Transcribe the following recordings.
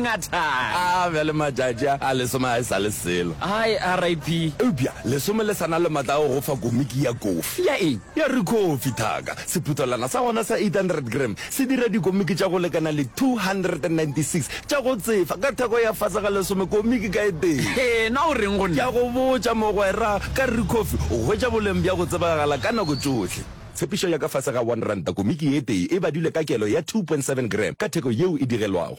Ngathana. A bjale matšatši a a lesome a e sa le selo. Hai, RIP. Eupša lesome le sa na le matla a go go fa komiki ya kofi. Ya eng? Ya Rikhofi, thaka. Sephuthelwana sa gona sa 800 gram se dira dikomiki tša go lekana le 296 tša go tsefa ka theko ya fase ga lesome komiki ka e tee. Hee, na o reng go Ke a nna? go botša, mogwera, ka Rikhofi o hwetša boleng bja go tsebagala ka nako tšohle. Tshepišo ya ka fase ga one ranta komiki e tee e badilwe ka kelo ya 2.7 gram ka theko yeo e digelwago.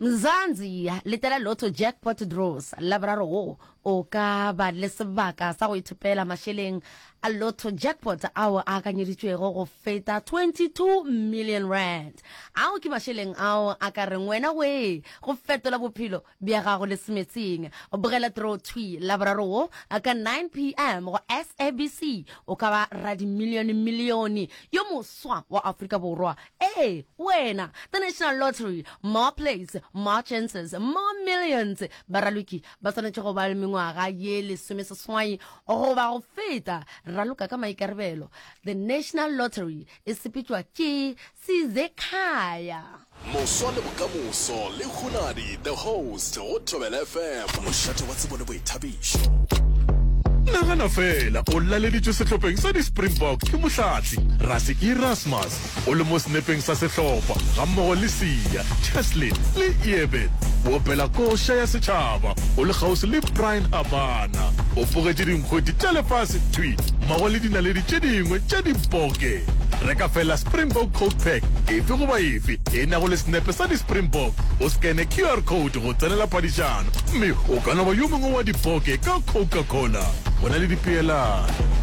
Mzansi, letela Lotto Jackpot Draws, Laboraro wo o ka ba le sebaka sa go ithopela mašeleng a Lotto Jackpot ao a akanyeditšwego go feta R22 million. Ao ke mašeleng ao a ka reng wena wee go fetola bophelo bja gago le semetsing. Bogela Draw Thwi Laboraro wo ka 9 pm go SABC, o ka ba radimilione-milione yo moswa wa Afrika Borwa Ee, wena, the National Lottery, more plays, more chances, more millions. Baraloki ba swanetše go ba le mengwaga ye lesomeseswai goba go feta. Raloka ka maikarabelo. The National Lottery e sepetšwa ke Sizekhaya. Moswa le bokamoso le Hunadi the host go Thobela FM. Mošate wa tsebo le boithabišo. nagana fela o laleditšwe sehlopheng sa di-springbok ke mohlatli rase erasmus o le mo senepeng sa sehlopha gammogo le sia cheslin le eben o opela koša ya setšhaba o le kgauswi le brian habana o bogetše dinkgweti tša lefase thwi mmogo le dinaledi tše dingwe tša diboke reka fela springbok coke pack efe goba efe e nago le senepe sa di-springbok o scanne qr code go tsenela paditšana gomme o ka no ba yo mongwe wa dipoke ka Coca-Cola go na le dipeelano.